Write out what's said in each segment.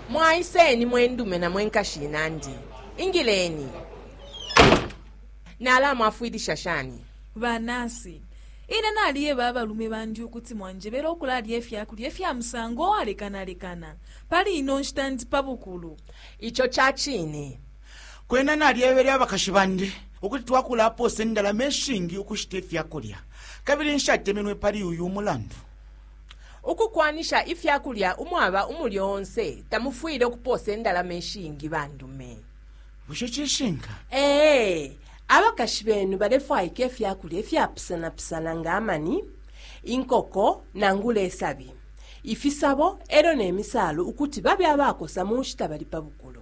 mwaiseni mwendume na mwenkashi inandi ingileni nalamwafwilisha shani banasi ine naliyeba abalume bandi ukuti mwanjebera okulalya efyakulya efya musango owalekanalekana pali ino nshita ndi pabukulu ico cacine Kwena nalyebele abakashi bandi ukuti twakulapoosa indalama ishingi ukushita ifya kulya, kabili nshatemenwe pali uyu mulandu. Ukukwanisha ifya kulya umwaba umulyo onse tamufwile ukupoosa indalama ishingi bandume. Bushe cishinka? Ee, abakashi benu balefwaika ifya kulya ifyapusanapusana nga amani, inkoko nangula isabi, ifisabo e lyo ne misaalu ukuti babe abakosa mu nshita bali pa bukulu.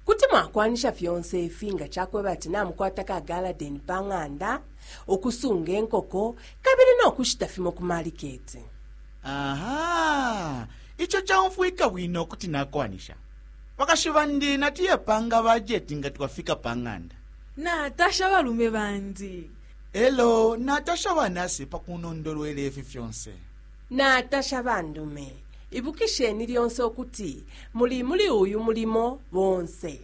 Kuti mwakwanisha fyonse ifi nga ca kweba ati namukwata ka galadeni pa ng'anda, ukusunga inkoko, kabili no kushita fimo ku maliketi. Aha! Ico caumfwika bwino kuti nakwanisha. Bakashi bandi natuye panga bajeti nga twafika pa ng'anda. Natasha abalume bandi. E lyo natasha banasi pa kunondolwela ifi fyonse. Natasha bandume. Ibukisheni lyonse ukuti muli muli uyu mulimo bonse.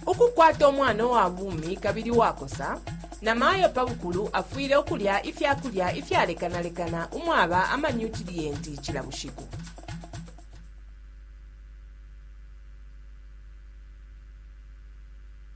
Ukukwata umwana uwa bumi kabili uwakosa, namayo pa bukulu afwile ukulya ifya kulya ifyalekanalekana umwaba amanyutiliyenti cila bushiku.